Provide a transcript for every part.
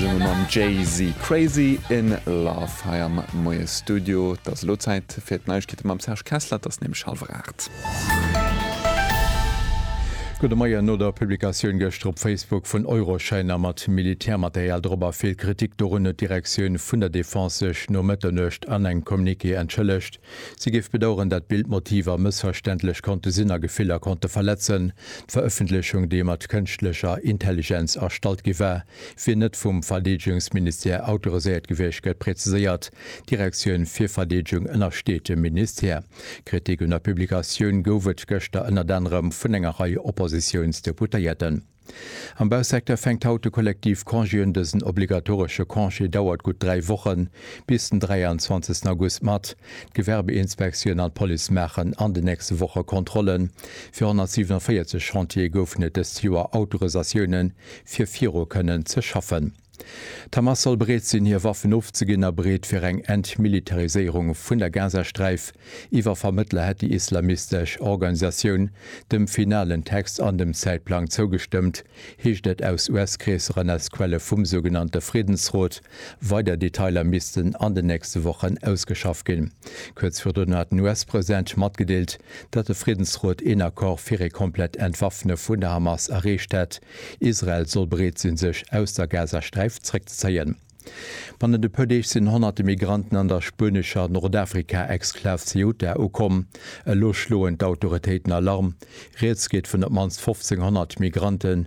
Sinn mer mam Jay-Z Crazy in Love hei am Moiesstudio. Et ass elo Zäit fir d'Neiegkeete mam Serge Kessler, et ass nämlech hallwer aacht. Gudde Moien. No der Publikatioun gëschter op Facebook vun Euroschäiner mat Militärmaterial drop a vill Kritik dorun, huet d'Direktioun vun der Defense sech no Mëtternuecht an engem Communiqué entschëllegt. Si géif bedaueren, dat Bildmotiver mëssverständlech konnte sinn a Gefiller konnte verletzen. D'Verëffentlechung, déi mat kënschtlecher Intelligenz erstallt gi war, wier net vum Verdeedegungsministère autoriséiert gewiescht, gëtt präziséiert. D'Direktioun fir Verdeedegung ënnersteet dem Ministère. Kritik un der Publikatioun gouf et gëschter ënnert anerem vun enger Rei Oppositiounsdeputéierten. Am Bausecteur fänkt haut de Kollektiv Congé un. Dësen obligatoresche Congé dauert gutt dräi Wochen, bis den 23 August mat. D'Gewerbeinspektioun an d'Police maachen an den nächste Woche Kontrolle fir 147 Chantiere. Goufen et dëst Joer Autorisatiounen, fir viru kënnen ze schaffen. D'Hamas soll bereet sinn, hir Waffen ofzeginn a bereet fir eng Entmilitariséierung vun der Gazasträif. Iwwer Vermëttler hätt déi islamistesch Organisatioun dem finalen Text an dem Zäitplang zougestëmmt, heescht et aus US-Kreesser an aus Quelle vum sougenannte Friddensrot. Weider Detailer missten an den nächste Wochen ausgeschaff ginn. Kuerz virdrun hat den US-President matgedeelt, datt de Friddensrot een Accord fir ee komplett Entwaffne vun der Hamas erreecht hätt, Israel soll bereet sinn, sech aus der Gazasträif zréckzezéien. Bannent e puer Deeg sinn honnerte Migranten an der spuenescher Nordafrika-Exklav Ceuta ukomm. Elo schloen d'Autoritéiten Alarm. Rieds geet vun op d'mannst 1.500 Migrante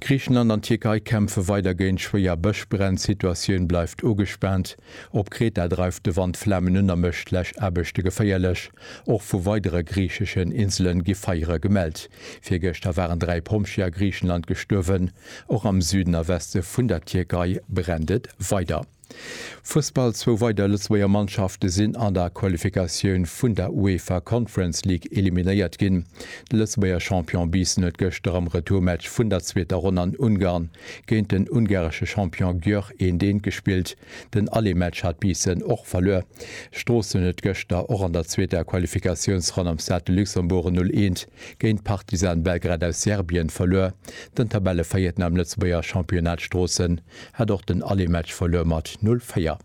Griichenland an d'Tierkei kämpfe weider géint schwéier Bëschbränn, Situatioun bleift ugespaant. Op Kreta dreift de Wand Flamen un a mécht Läschaarbechte geféierlech. Och vu weidere griicheschen Inselen gi Feiere gemellt. Virgëschter waren 3 Pompjeeë a Griichenland gestuerwen. Och am Süden a Weste vun der Tierkei brennt et weider. Fussball, Zwou weider Lëtzebuerger Mannschafte sinn an der Qualifikatioun vun der UEFA Conference League eliminéiert ginn. De Lëtzebuerger Champion Biissen huet gëschter am Retourmatch vun der zweeter Ronn an Ungarn géint den ungaresche Champion Győr eent eent gespillt. Den Allé-Match hat Biissen och verluer. Stroossen huet gëschter och an der zweeter Qualifikatiounsronn am Stade de Luxembourg en Null eent géint Partizan Belgrad aus Serbien verluer. Den Tabellevéierten am Lëtzebuerger Championnat Stroossen hat och den Allematch verluer mat 0, 4.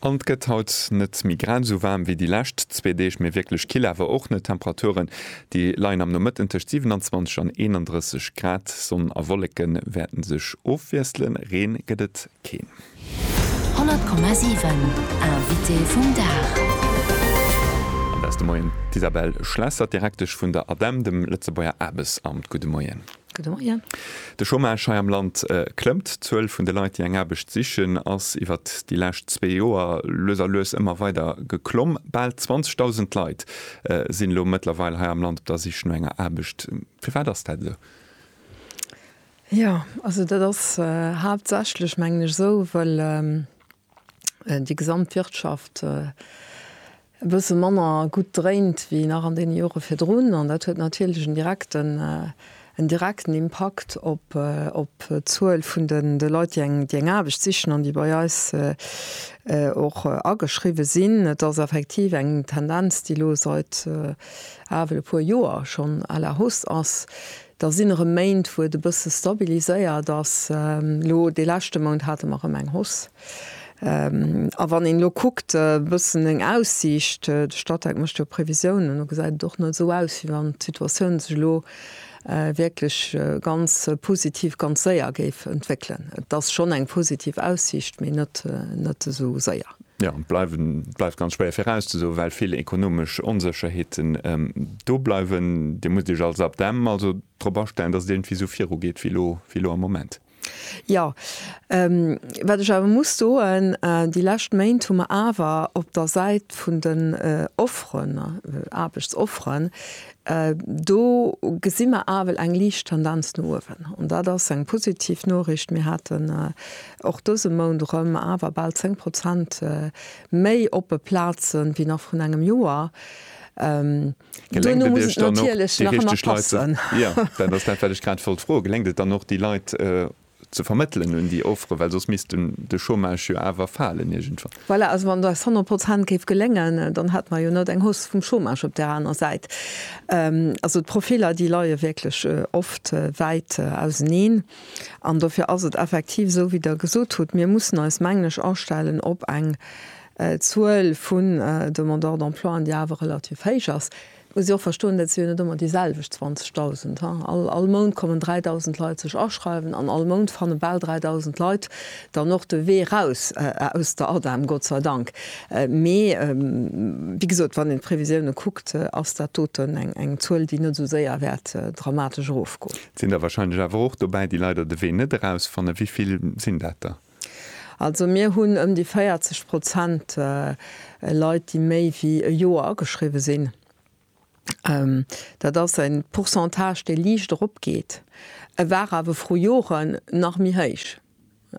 An et gëtt haut net méi grad esou waarm wéi déi lescht zwee Deeg, mee wierklech kill awer och net. Temperaturen, déi leien am Nomëtten tëscht 27 an 31 Grad. Sonn a Wolleke wäerte sech ofwiesselen, Reen gëtt et keen. 100,7 Invité vum Dag. An der ass de Moien d'Isabelle Schlesser, d'Direktesch vun der ADEM, dem Lëtzebuerger Aarbechtsamt. Gudde Moien. De Chômage hei am Land klëmmt. D'Zuel vun de Leit, déi eng Aarbecht sichen, ass iwwert déi lescht zwee Joer lues a lues ëmmer weider geklomm. Bal 20.000 Leit sinn elo mëttlerweil hei am Land op der Sich no enger Aarbecht. Firwat ass dat esou? Jo, also dat ass haaptsächlech, mengen ech, esou, well. déi gesamt Wirtschaft e bësse manner gutt dréint wéi nach an deene Jore virdrun. An dat huet natierlech en direkten, en direkten Impakt op, op d'Zuel vun de, de Leit, déi eng, déi eng Aarbecht sichen an déi bei eis och ageschriwwe sinn. Et ass effektiv eng Tendenz, déi elo seit awel e puer Joer schonn à la hausse ass. Da sinn erëm Méint, wou et e bësse stabiliséiert ass. Elo dee leschte Mount hate mer erëm eng Hausse. A wann een elo kuckt e bëssen eng Aussiicht, de Statec mécht jo Previsiounen, do gesäit et och net esou aus, wéi wann d'Situatioun sech elo wierklech ganz positiv, ganz séier géif entwéckelen. Et ass schonn eng positiv Aussiicht, mee net esou séier. Jo, et bleift ganz schwéier virauszesoen, well vill ekonomesch Onsécherheeten do bleiwen. Dir musst Iech als Abdem also drop astellen, datt et iergendwéi esou virugeet wéi elo am Moment? Jo. Wat ech awer muss soen, déi lescht Méint hu mer awer op der Säit vun den Offeren, Aarbechtsofferen, Do gesi mer awel eng liicht Tendenz no uewen, an dat ass eng positiv Noriicht. Mir haten och dëse Mount erëm awer bal 10 Prozent méi oppe Plazen, wéi nach vrun engem Joer. Geléngt et Iech dann och, déi richteg Leit, jo, dat ass dat, wat ech grad wollt froen, geléngt et dann och, déi Leit ze vermëttelen un déi Offere, well soss misst dunn de Chômage jo awer falen iergendwann. Voilà, also wann eis 100 Prozent géif geléngen, dann hätte mer jo net eng Hausse vum Chômage op där aner Säit. Also d'Profiler, déi leie wierklech oft wäit auseneen an dofir ass et effektiv esou wéi Der gesot hutt, mir mussen eis, mengen ech, astellen op eng Zuel vun Demandeurs d'emploien, déi awer relativ héich ass. Et muss ee och verstoen, dat si jo net ëmmer déi selwecht 20.000, he. All, all Mount kommen 3.000 Leit sech aschreiwen an all Mount fanne bal 3.000 Leit dann och de Wee raus aus der ADEM, Gott sei Dank. Mee, wéi gesot, wann een d'Previsiounen kuckt, ass dat doten eng, eng Zuel, déi net esou séier wäert dramatesch erofgoen. Et sinn der wahrscheinlech awer och dobäi, déi leider de Wee net erausfannen. Wéi vill sinn dat der? Also mir hunn ëm déi 40 Prozent Leit, déi méi wéi e Joer ageschriwwe sinn. Dat ass e Pourcentage, dee liicht eropgeet. E war awer vru Joren nach méi héich.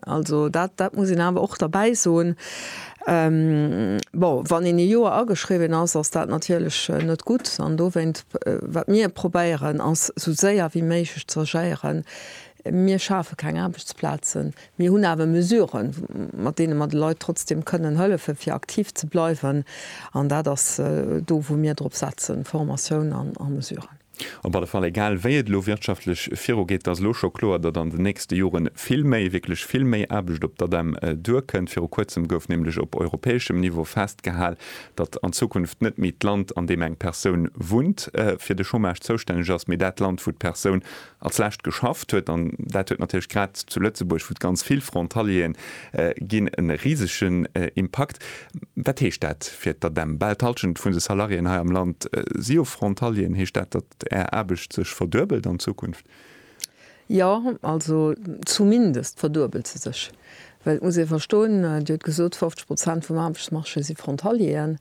Also dat muss een awer och derbäi soen. Bon, wann een e Joer ageschriwwen ass, ass dat natierlech net gutt. An dowéinst, wat mir probéieren, ass esou séier wéi méiglech ze agéieren, Mir schafe keng Aarbechtsplazen, mir hunn awer Mesuren, mat deene mer de Leit trotzdeem kënnen hëllefen, fir aktiv ze bleiwen. An dat ass do, wou mir drop setzen, Formatioun a Mesuren. Op alle Fall, egal wéi et elo wirtschaftlech virugeet, et ass elo scho kloer, datt an den nächste Jore vill méi, wierklech vill méi Aarbecht op d'ADEM duerkënnt. Viru Kuerzem gouf nämlech op europäeschem Niveau festgehal, datt an Zukunft net méi d'Land, an deem eng Persoun wunnt, fir de Chômage zoustänneg ass, mee dat Land, wou d'Persoun Als lescht geschafft huet, an dat huet natierlech grad zu Lëtzebuerg, wou et ganz vill Frontalieren ginn, e risegen Impakt. Wat heescht dat fir d'ADEM? Bal d'Halschent vun de Salariéen hei am Land si jo Frontalieren. Heescht dat, datt Är Aarbecht sech verduebelt an Zukunft? Jo, also zumindest verduebelt se sech. Well et muss ee verstoen, Dir hutt gesot, 50 Prozent vum Aarbechtsmarché si Frontalieren.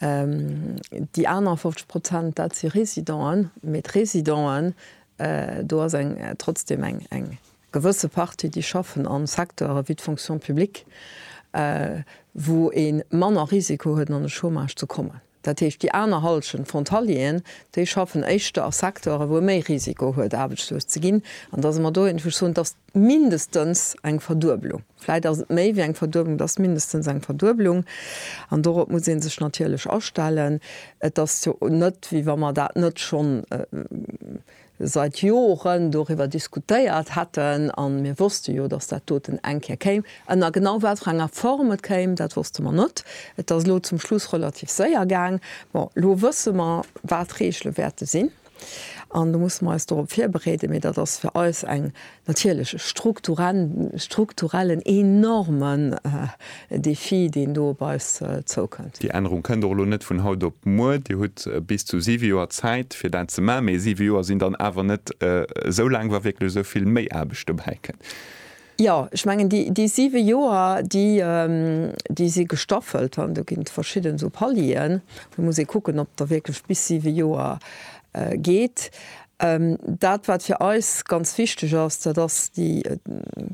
Déi aner 50 Prozent, dat si Résidenten. Mee d'Résidenten, do ass eng, trotzdem eng, eng gewësse Partie, déi schaffen a Secteure wéi d'Fonction publique, wou ee manner Risiko huet, an de Chômage ze kommen. Dat heescht, déi aner Hallschent Frontalieren, déi schaffen éischter a Secteuren, wou e méi Risiko huet, aarbechtslos ze ginn. An da si mer do, wou ech soen, et ass mindestens eng Verdueblung, vläicht ass et méi wéi eng Verdueblung, et ass mindestens eng Verdueblung. An dorop muss ee sech natierlech astellen. Et ass jo net, wéi wa mer dat net schonn seit Joren doriwwer diskutéiert hätten, a mir wosste jo, datt dat doten eng Kéier kéim. Ënner genau wat fir enger Form et kéim, dat wosste mer net. Et ass elo zum Schluss relativ séier gaang. Bon, elo wësse mer, wat d'Reegele wäerte sinn, an elo musse mer eis dorop virbereeden. Mee dat ass fir eis eng natierlech e strukturellen, enormen Défi, deen do op eis zoukënnt. Déi Ännerung kënnt och elo net vun haut op muer. Dir hutt bis zu siwe Joer Zäit, fir dat ze maachen, mee siwe Joer sinn dann awer net esou laang, wa wierklech esou vill méi Aarbecht dobäi kënnt. Jo, ech mengen, déi siwe Joer, déi si gestaffelt an do ginn et verschidden esou Palieren. Do muss ee kucken, ob Der wierklech bis siwe Joer geet. Dat, wat fir eis ganz wichteg ass, dat ass déi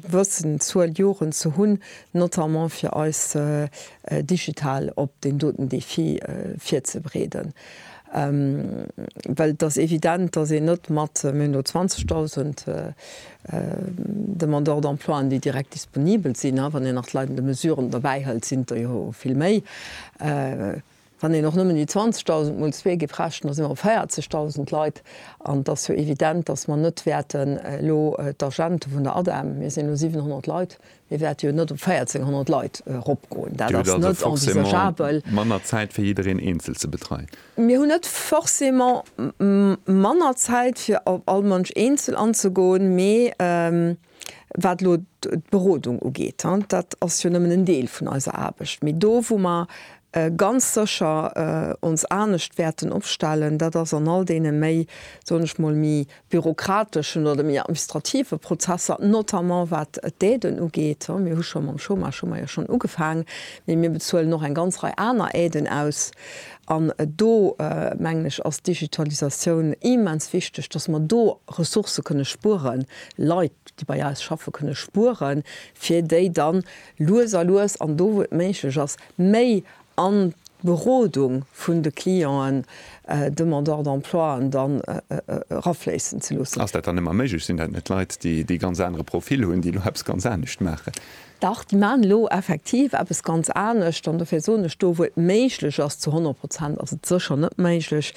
gewëssen Zuel Joren ze hunn, notamment fir eis digital op deen doten Defi virzebereeden. Well et ass evident, dass een net mat, mir hunn do 20.000 Demandeurs d'emploien, déi direkt disponibel sinn, wann een nach d'Leit an de Mesuren dobäi hëlt, sinn der jo vill méi, Wann een och nëmmen déi 20.000 mol zwee géif rechnen, da si mer op 40.000 Leit. An et ass jo evident, datt mer net wäerten elo d'Agente vun der ADEM, mir sinn elo 700 Leit, mir wäerte jo net op 1.400 Leit eropgoen. Dat ass net envisageabel. Dir hutt also forcément manner Zäit, fir jiddereen eenzel ze betreien? Mir hunn net forcément manner Zäit, fir op all Mënsch eenzel anzegoen, mee Wat elo d'Berodung ugeet, dat ass jo nëmmen en Deel vun eiser Aarbecht. Mee do, wou mer ganz sécher ons anescht wäerten opstellen, dat ass an all deene méi, soen ech mol, méi bürokrateschen oder méi administrative Prozesser, notamment wat d'Aiden ugeet. Mir hu scho mam Chômage hu mer jo schonn ugefaangen, mee mir bezuelen och eng ganz Rei aner Aiden aus. An do, mengen ech, ass d'Digitalisatioun immens wichteg, dass mer do Ressourcë kënne spueren, Leit, déi bei eis schaffen, kënne spueren, fir déi dann lues a lues an do, wou et méiglech ass, méi an d'Berodung vun de Clienten, Demandeurs d'emploien, dann erafléissen ze loossen. Ass dat dann ëmmer méiglech? Sinn dat net Leit, déi ee ganz anere Profil hunn, déi elo eppes ganz anescht maachen? Dach, déi maachen elo effektiv eppes ganz anescht. An dofir soen ech do, wou et méiglech ass, zu 100 Prozent ass et sécher net méiglech,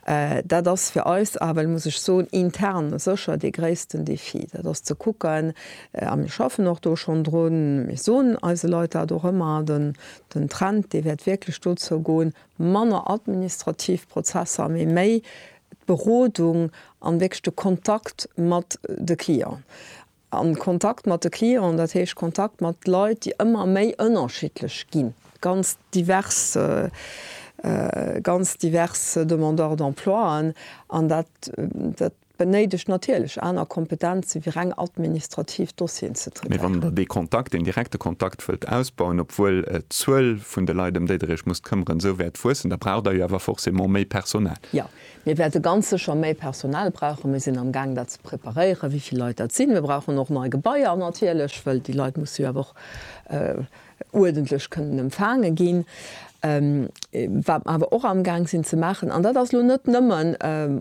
dat ass fir eis ewell, muss ech soen, intern sécher dee gréissten Défi, dat ass ze kucken, a mir schaffen och do schonn drun, mir soen eise Leit dat och ëmmer, den Trend, dee wäert wierklech dozou goen, manner administrativ Prozesser, mee méi d'Berodung an wierklech de Kontakt mat de Clienten. An Kontakt mat de Clienten, dat heescht Kontakt mat Leit, déi ëmmer méi ënnerschiddlech ginn, ganz divers, ganz divers Demandeurs d'emploien. An dat, dat benéidegt natierlech aner Kompetenze wéi reng administrativ Dossieren ze traitairen. Mee wann Der dee Kontakt, deen direkte Kontakt wëllt ausbauen, obwuel d'Zuel vun de Leit, ëm déi Der Iech musst këmmeren, esou wäert wuessen, da braucht Der jo awer forcément méi Personal. Jo, Mir wäerte ganz sécher méi Personal brauchen. Mir sinn am Gaang dat ze preparéieren, wéi vill Leit dat sinn. Mir brauchen och nei Gebaier natierlech, well déi Leit musse jo awer och uerdentlech kënnen empfaange ginn. Wat mer awer och am Gaang sinn ze maachen, an dat ass elo net nëmme,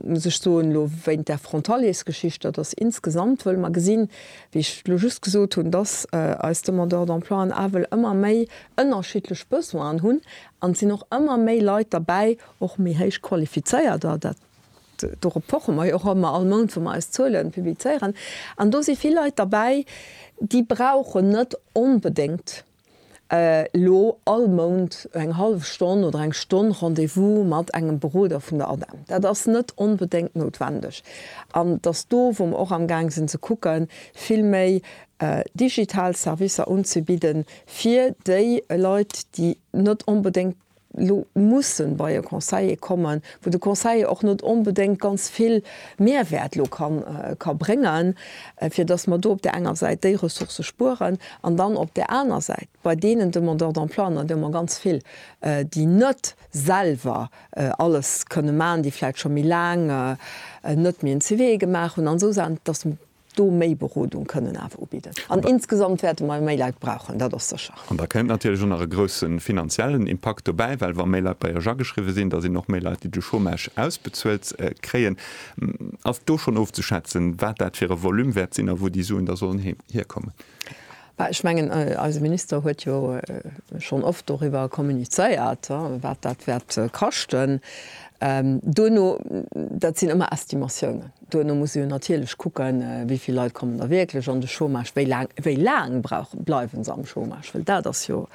muss ech soen, elo wéint där Frontaliers-Geschicht, dat ass insgesamt, wëll mer gesinn, wéi ech elo just gesot hunn, dass eis Demandeurs d'emploi en Awel ëmmer méi ënnerschiddlech Besoinen hunn, an et sinn och ëmmer méi Leit derbäi, Och méi héich Qualifizéierter, dat, dorop poche mer jo och ëmmer all Mount, wou mer eis Zuelen publizéieren. An do si vill Leit derbäi, déi brauchen net onbedéngt elo all Mount eng hallef Stonn oder eng Stonn Rendez-vous mat engem Beroder vun der ADEM. Dat ass net onbedéngt noutwendeg. An et ass do, wou mer och amgaang sinn ze kucken, vill méi digital Servicer unzebidden, fir déi Leit, déi net onbedéngt elo mussen bei e Conseiller kommen, wou de Conseiller och net onbedéngt ganz vill Mehrwäert elo ka bréngen, fir dass mer do op där enger Säit déi Ressourcë spueren an dann op där aner Säit bei deenen Demandeurs d'emploi, an der hunn mer ganz vill, déi net selwer alles kënne maachen, déi vläicht scho méi laang net méi en CV gemaach hunn an esou Saachen, dass do méi Berodung kënnen awer ubidden an insgesamt wäerte mer méi Leit brauchen, dat ass sécher. An da kënnt natierlech och nach e grousse finanziellen Impakt dobäi, well wa méi Leit bei Iech ageschriwwe sinn, da sinn och méi Leit, déi de Chômage ausbezuelt kréien. Ass do schonn ofzeschätzen, wat dat fir e Volume wäert sinn a wou déi Suen da sollen hierkommen? Ech mengen, eise Minister huet jo schonn oft doriwwer kommunizéiert, wat dat wäert kaschten. Duerno, dat sinn ëmmer Estimatiounen. Duerno muss ee jo natierlech kucken, wéi vill Leit kommen da wierklech an de Chômage, wéi laang, wéi laang brauchen, bleiwe se am Chômage, well dat ass jo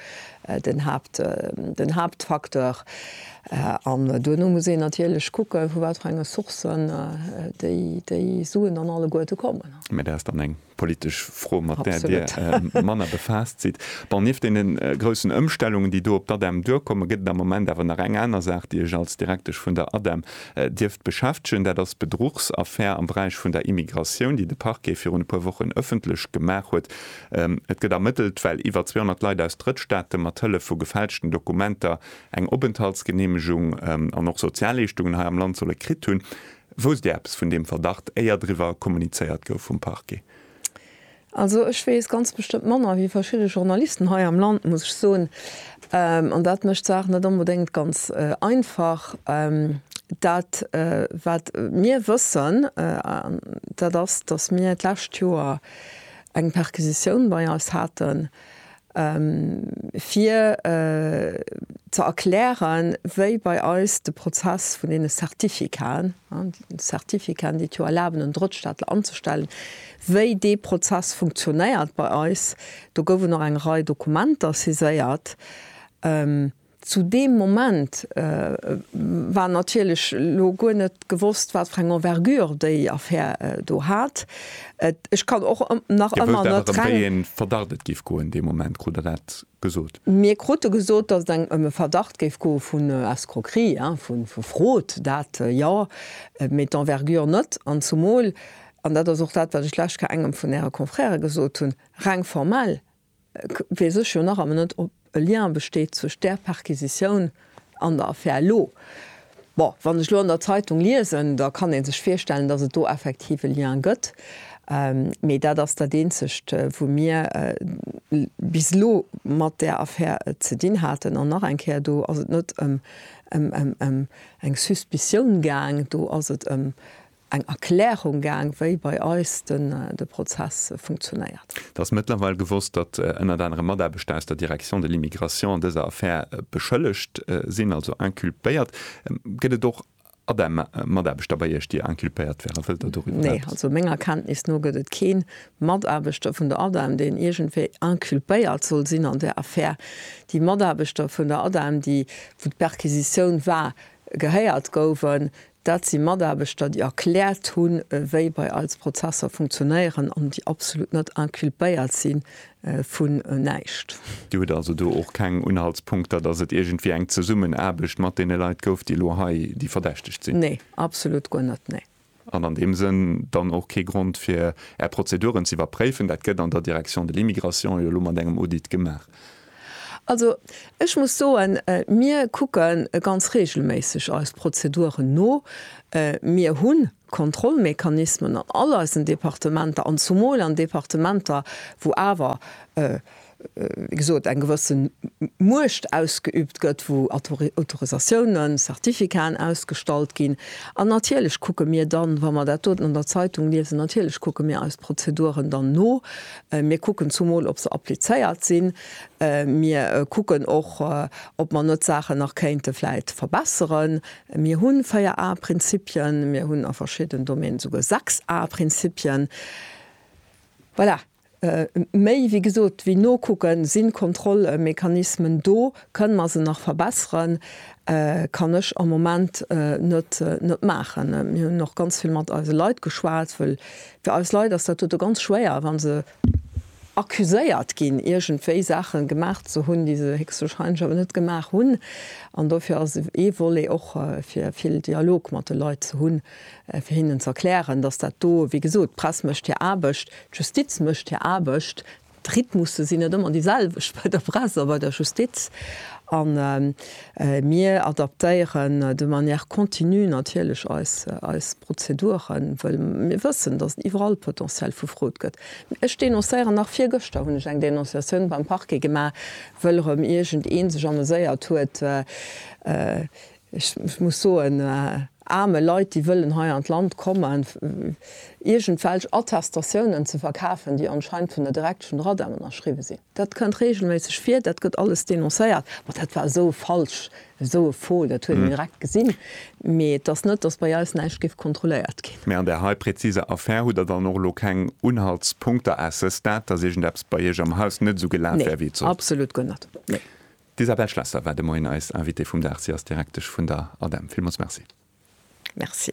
den Haapt, den Haaptfacteur. An duerno muss een natierlech kucken, vu wat fir enge Sourcen déi, déi Suen dann alleguerte kommen. Mä dat ass dann eng politesch Fro, mat där Dir manner befaasst sidd. Bon, nieft deene groussen Ëmstellungen, déi do op d'ADEM duerkommen, gëtt et am Moment awer nach eng aner Saach, déi Iech als Direktesch vun der ADEM dierft beschäftegen. Dat ass d'Bedruchsaffär am Beräich vun der Immigratioun, déi de Parquet virun e puer Wochen ëffentlech gemaach huet. Et gëtt ermëttelt, well iwwer 200 Leit aus Drëttstaate mat Hëllef vu gefälschten Dokumenter eng Openthaltsgeneemegung an och Sozialleeschtungen hei am Land solle kritt hunn. Wousst Dir eppes vun deem Verdacht, éier driwwer kommunizéiert gouf vum Parquet? Also ech weess ganz bestëmmt manner wéi verschidde Journalisten hei am Land, muss ech soen. An dat mécht d'Saach net onbedéngt ganz einfach. Dat, wat mir wëssen, dat ass, datt mir d'lescht Joer eng Perquisitioun bei eis haten, fir ze erklären, wéi bei eis de Prozess vun deene Certificaten, Certificaten, déi et jo erlaben, en Drëttstaatler anzustellen, wéi dee Prozess funktionéiert bei eis. Do gouf et och eng Rei Dokumenter saiséiert. Zu deem Moment war natierlech elo guer net gewosst, wat fir eng Envergure déi Affär do hat. Ech kann och nach ëmmer net reng. Dir wosst awer, ëm wéi ee Verdacht et géif goen, dee Moment krut Der dat gesot? Mir krute gesot, datt et ëm e Verdacht géif goe vun Escroquerie, vu Frod, dat jo, mee d'Envergure net. An zumol, an dat ass och dat, wat ech d'lescht Kéier engem vun Äre Confrèrë gesot hunn, reng formell Ech weess ech jo nach ëmmer net, ob e Lien besteet zwëscht där Perquisitioun an der Affär elo. Bon, wann ech elo an der Zeitung liesen, da kann ee sech virstellen, dass et do effektiv e Lien gëtt. Mee dat ass dat Eenzegt, wou mir bis elo mat där Affär ze dinn haten. An nach eng Kéier, do ass et net ëm eng Suspicioun gaang, do ass et ëm eng Erklärung gaang, wéi bei eis de Prozess funktionéiert. Et ass mëttlerweil gewosst, datt ënnert anerem Mataarbechter aus der Direction de l'immigration an dëser Affär beschëllegt sinn, also inculpéiert. Gëtt et och ADEM-Mataarbechter bei Iech, déi inculpéiert wären? Wëllt Der doriwwer eppes. Nee, also menger Kenntnis no gëtt et kee Mataarbechter vun der ADEM, deen iergendwéi inculpéiert soll sinn an där Affär. Déi Mataarbechter vun der ADEM, déi, wou d'Perquisitioun war, gehéiert gouwen, Dat si Mataarbechter, déi erkläert hunn, wéi bei eis Prozesser funktionéieren an déi absolut net inculpéiert si vu näischt. Dir hutt also do och keng Unhaltspunkter, dass et iergendwéi eng Zesummenaarbecht mat deene Leit gouf, déi elo hei, déi verdächtegt sinn? Nee, absolut guer net, nee. An an deem Sënn dann och kee Grond, fir Är Prozeduren ze iwwerpréifen? Dat gëtt an der Direction de l'immigration jo elo mat engem Audit gemaach. Also, ech muss soen, mir kucke ganz reegelméisseg eis Prozeduren no. Mir hu Kontrollmechanismen an all eisen Departementer an zumol an Departementer, wou awer, wéi gesot, eng gewësse Muecht ausgeübt gëtt, wou Autorisatiounen, Certificaten ausgestallt ginn. An natierlech kucke mir dann, wa mer dat doten an der Zeitung liesen, natierlech kucke mir eis Prozeduren dann no, Mir kucken zumol, ob se applizéiert sinn. Mir kucken och, ob mer net Saachen nach kéinte vläit verbesseren. Mir hu véier A-Prinzipien. Mir hunn a verschidden Domänen esouguer sechs A-Prinzipien. Voilà. Méi, wéi gesot, wéi nokucken, si Kontrollmechanismen do? Kënne mer se nach verbesseren? kann ech am Moment net maachen. Mir hunn och ganz vill mat eise Leit geschwat, wëll Fir eis Leit ass dat dote ganz schwéier, wa se accuséiert ginn, iergendwéi Saache gemaach ze hunn, déi se héchstwahrscheinlech awer net gemaach hunn. An dofir ass ee Volet och, fir vill Dialog mat de Leit ze hunn, fir hinnen ze erklären, dass dat do, wéi gesot, d'Press mécht hir Aarbecht, d'Justiz mécht hir Aarbecht, D'Rhythmusse sinn net ëmmer déi selwecht bei der Press a bei der Justiz. A mir adaptéieren de manière continue natierlech eis Prozeduren, wëll mir wëssen, datt et iwwerall Potentiel vu Fraude gëtt. Ech denoncéieren nach, virgëschter hunn ech eng Denonciatioun beim Parquet gemaach, wëll erëm iergend ee sech ameséiert huet, Ech muss soen, aarme Leit, déi wëllen hei an d'Land kommen, iergendwelch Attestatiounen ze verkafen, déi anscheinend vun der Direction Radam ënnerschriwwe sinn. Dat kënnt reegelméisseg vir, dat gëtt alles denoncéiert. Ma dat war esou falsch, esou e Faux, dat huet een direkt gesinn. Mee et ass net, dass bei eis näischt géif kontrolléiert ginn. Mä an där hei präziser Affär hutt Der dann och elo keng Unhaltspunkter à ce stade, dass iergendeppes bei Iech am Haus net esou gelaf wär, wéi et sollt? Nee, absolut guer net. Nee. D'Isabelle Schlesser war de Moien eis Invitée vum Dag. Si ass Direktesch vun der ADEM. Villmools Merci. Merci.